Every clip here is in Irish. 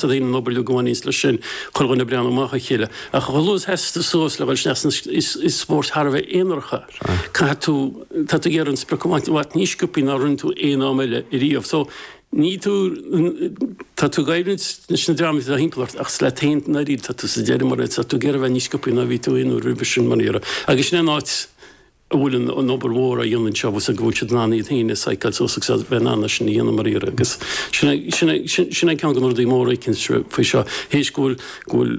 tá an obair uilig a bhaineanns leis sin, chuile dhuine ag breathnú amach dá chéile. Ach chomh luath is a sheasas tú suas le dhul ag snámh is spórt thar a bheith aonarach é, caithfidh tú, tá tú ag iarraidh an sprioc a bhaint amach níos sciopthaí ná a rinne tú aon am eile riamh. So, ní tú, tá tú ag éirí leis na dreamanna atá thimpeall ort ach is leat féin i ndáiríre atá tú sa deireadh mar tá tú ag iarraidh a bheith níos sciopthaí ná a bhí tú aon uair roimhe sin i ndáiríre. Agus sin é an áit, a bhfuil an obair mhór á dhéanamh anseo, agus go bhfuil siad in ann iad féin a psycheáil suas agus a bheith in ann é sin a dhéanamh i ndáiríre. Agus sin é ceann de na rudaí móra eicint faoi seo, théis go bhfuil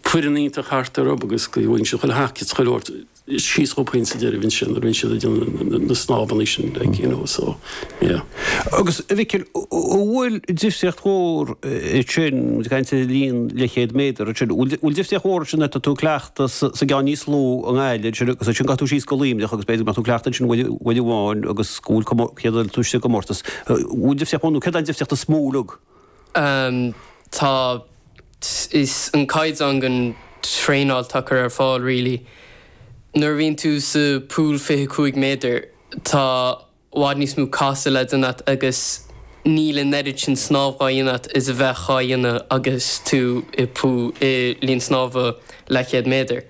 foireann iontach thart orthu agus go bhfaigheann siad chuile thaca is chuile shórt síos chucu féin sa deireadh ansin, a bhíonn siad ag déanamh na snámhanna sin, like, you know, so. Agus, a Mhicil, an bhfuil difríocht mhór ansin, ag caint ar an linn leathchéad méadar ansin, an bhfuil difríocht mhór ansin má tá tú ag cleachtadh sa gceann níos lú i nGaillimh ansin agus ansin gabhfaidh tú síos go Luimneach agus b'fhéidir go mbeadh tú ag cleachtadh ansin uair amháin agus go bhfuil comór, céard a bhfuil tú sa gcomórtas, an bhfuil difríocht mhór nó céard an difríocht is mó uilig. Amm, tá, is an caighdeán den traenáil atá curtha ar fáil really. Nuair a bhíonn tú sa pool fiche cúig méadar, Tá i bhfad níos mó casadh le déanamh agat agus níl an oiread sin snámh dhá dhéanamh agat is a bheadh dhá dhéanamh agus tú i linn snámha leathchéad méadar.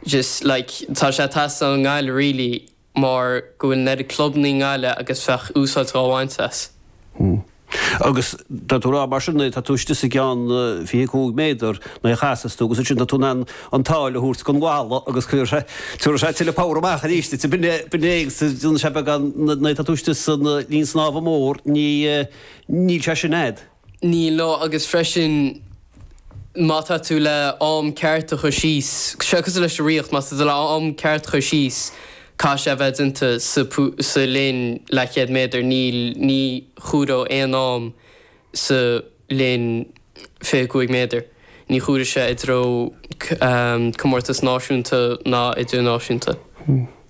Just, like, tá sé ag teastáil i nGaillimh really mar go bhfuil an oiread clubannaí i nGaillimh agus bheadh úsáid dhá bhaint as. Agus tá tú ag rá mar sin, nuair atá tú istigh sa gceann 25 méadar, nuair a chasas tú, agus ansin tá tú in ann an tsáil a thabhairt don bhalla agus chuir sé, tabharfaidh sé tuilleadh power amach arís duit, bain léi agus d'fhan sé beagán, nuair atá tú istigh sa linn snámha mór, ní, níl sé sin a'd. Níl, no, agus freisin Má tá tú le am ceart a chur síos, seo cosúil leis an ritheacht, má tá tú le am ceart a chur síos caithfidh sé a bheith déanta sa linn leathchéad méadar, níl, ní chomhaireodh aon am sa linn fiche cúig méadar, ní chomhairfeadh sé i dtreo comórtas náisiúnta ná idirnáisiúnta.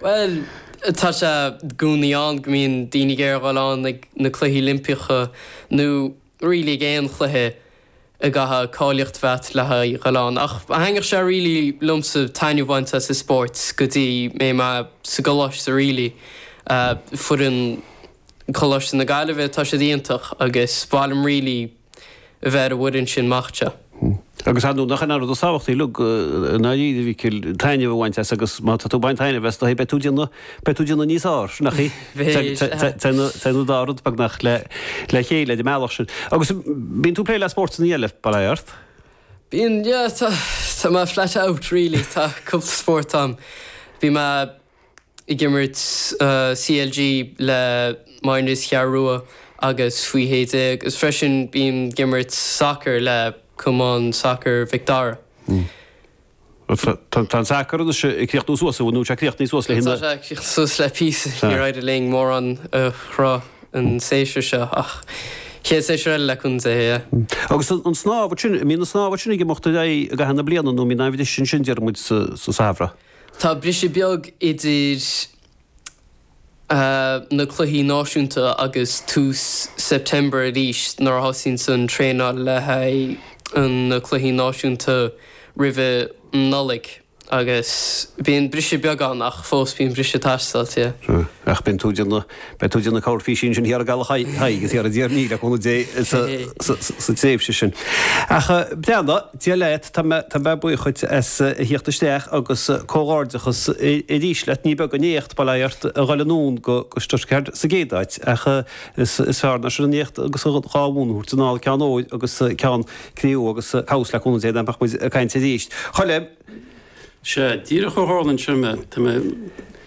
Bhuel, tá sé i gcónaí ann go mbíonn daoine ag iarraidh a dhul ann ag na Cluichí Oilimpeacha nó really ag aon chluiche a gcaithfeá cáilíocht a bheith a'd le haghaidh a dhul ann. Ach thaitneodh sé really liomsa taitneamh a bhaint as an spórt go dtí go mbeidh mé sa gcoláiste really. Foireann Choláiste na Gaillimhe, tá siad iontach agus ba mhaith liom really. a bheith ar an bhfoireann sin mac de. Agus ar ndóigh, nach in an rud is tábhachtaí uilig i ndáiríre, a Mhicil, taitneamh a bhaint as agus má tá tú ag baint taitneamh as is dóigh beidh tú ag déanamh, beidh tú ag déanamh níos fearr ansin, nach ea? Téann an dá rud beagnach le chéile ar an mbealach sin. Agus bíonn tú ag plé le spóirteanna eile, bail ó Dhia ort? Bíonn, yeah, tá, tá mé flat out really, tá cúpla spórt ann. Bhí mé ag imirt CLG le minors Cheathrú Rua agus faoi shé déag agus freisin bím ag imirt sacair le Cumann Sacair Mhic Dara. Tá an sacar anois ag críochnú suas, nó tá sé críochnaithe suas le hinseacht. Tá sé críochnaithe suas le píosa, níor éirigh linn mórán a chruthú an séasúr seo ach chéad séasúr eile le cúnamh Dé. Agus an snámh, an mbíonn an snámh sin ag imeacht ar aghaidh i gcaitheamh na bliana nó an mbíonn aon bhriseadh ansin, deir muid, sa samhradh? Tá briseadh beag idir na cluichí náisiúnta agus tús September arís nuair a thosaíonns an traenáil le haghaidh na cluichí náisiúnta roimhe Nollaig agus bíonn briseadh beag ann ach fós bíonn briseadh ag teastáil. Ach bíonn tú ag déanamh Beidh tú ag déanamh corrphísín ansin thiar i gCaladh Thaidhg agus thiar i dTír an Fhia, le cúnamh Dé, sa tréimhse sin. Ach plean do, Dia leat, tá mé buíoch dhuit as a theacht isteach agus comhghairdeachas arís leat. Ní beag an éacht, bail ó Dhia ort, a dhul anonn go Stuttgart sa gcéad áit, ach is fearr ná sin an éacht agus an dhá bhonn a thabhairt anall, ceann óir agus ceann cré-umha agus cá bhfios, le cúnamh Dé, nach mbeidh muid ag caint arís. Choilm! Sea, díreach a tharla anseo mé. Tá mé.